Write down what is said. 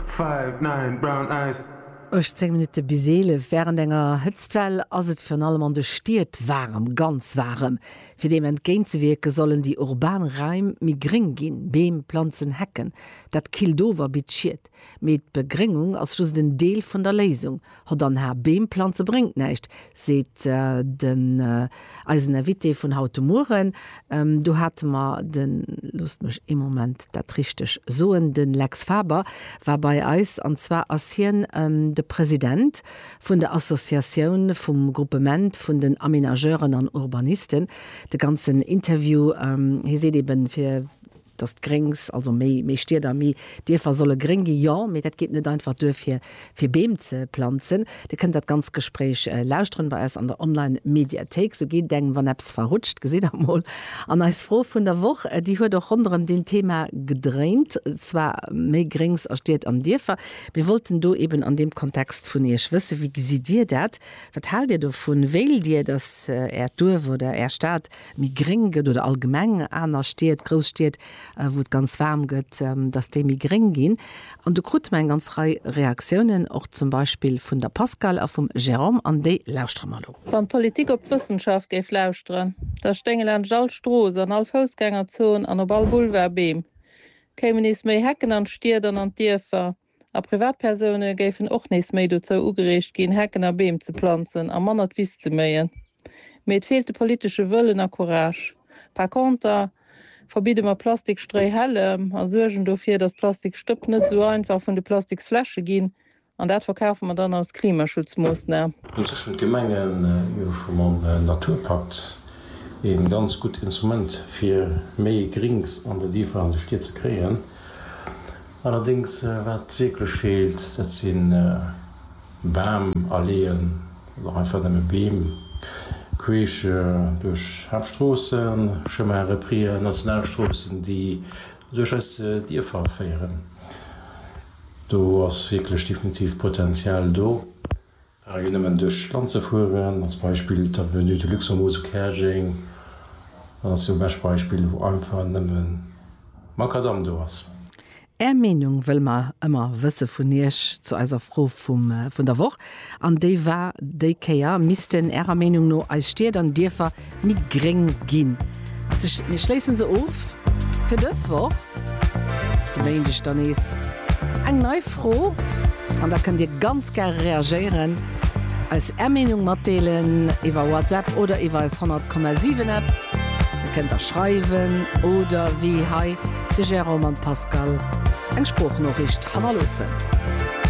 Five, nine, brown eyes. 18 Minutte bis 11, Wärend enger Hëtztwell ass et virun allem an de Stied waarem, ganz waarem. Fir deem entgéintzewierke sollen déi urban Raim méi gréng ginn, Beem, Planzen, Hecken. Dat killt of a bitt Schied. Mee d'Begréngung ass just en Deel vun der Léisung. Hott an Har Beem planze bréngt näischt, seet den eisen Invité vun haut de Mueren. Do hate mer den, loosst mech ee Moment dat richteg soen, de Lex Faber war bei eis, an zwar ass hien de President vun der Associatioun vum Gruppement vun den Aménageuren an Urbanisten. De ganzen Interview, hie seet eeben, fir. dass d'Gréngs, also méi, méi Stied a méi Dierfer solle gréng gi, jo, mee dat geet net einfach duer fir, fir Beem ze planzen. Dir kënnt dat ganzt Gespréich lauschteren bei eis an der Online Mediathéik. Sou geet et engem wann eppes verrutscht, gesitt der mol. An eis Fro vun der Woch, déi huet och ronderëm deen Thema gedréint, zwar méi Gréngs a Stied an Dierfer. Mir wollten do eben an deem Kontext vun iech wësse, wéi gesitt dir dat? Wat haalt dir dovun? Wéilt dir, dass äert Duerf oder är Stad méi gréng gëtt oder allgemeng aner Stied, grouss Stied, wou et ganz waarm gëtt, datt déi méi gréng ginn. An do krute mer eng ganz Rei Reaktiounen, och zum Beispill vun der Pascale a vum Jérôme, an déi lauschtere mer elo. Wann d'Politik op d'Wëssenschaft géif lauschteren, da stéinge laanscht all Strooss, an all Foussgängerzon an op all Boulevard Beem, kéimen nees méi Hecken an d'Stied an an d'Dierfer, A Privatpersoune géifen och nees méi dozou ugereegt ginn, Hecken a Beem ze planzen a manner d'Wiss ze méien. Mee et feelt de politesche Wëllen a Courage. Par conter verbidde mer Plastikstréihällem a suergen dofir, datt Plastikstëpp net esou einfach vun de Plastiksfläsche ginn, an dat verkafe mer dann als Klimaschutzmoossnam. Tëschent de Gemengen hu mer scho mam Naturpakt e ganz gutt Instrument, fir méi Grinks an de Dierfer an de Stied ze kréien. Allerdéngs, wat wierklech feelt, dat si Bam, Alleeën oder och einfach nëmme Beem queesch duerch Haaptstroossen, Chemins reprises, Nationalstroossen, déi duerch eis Dierfer féieren. Do ass wierklech definitiv Potenzial do. Ware jo nëmmen duerch d'Land ze fueren. Als Beispill d'Avenue de Luxembourg zu Käerjeng. Dat ass jo e bescht Beispill, wou einfach nëmmen Makadamm do ass. Är Meenung wëlle mer ëmmer wësse vun Iech zu eiser Fro vun der Woch. An déi war déi Kéier, Missten Ärer Meenung no eis Stied an Dierfer méi gréng ginn. Mir schléissen se of fir dës Woch. De Méindeg dann nees eng nei Fro an da kënnt Dir ganz gäre reagéieren, eis Är Meenung matdeelen iwwer WhatsApp oder iwwer eis 100,7 App. Dir kënnt da schreiwen oder wéi hei de Jérôme an d'Pascale eng Sproochnoriicht hannerloossen.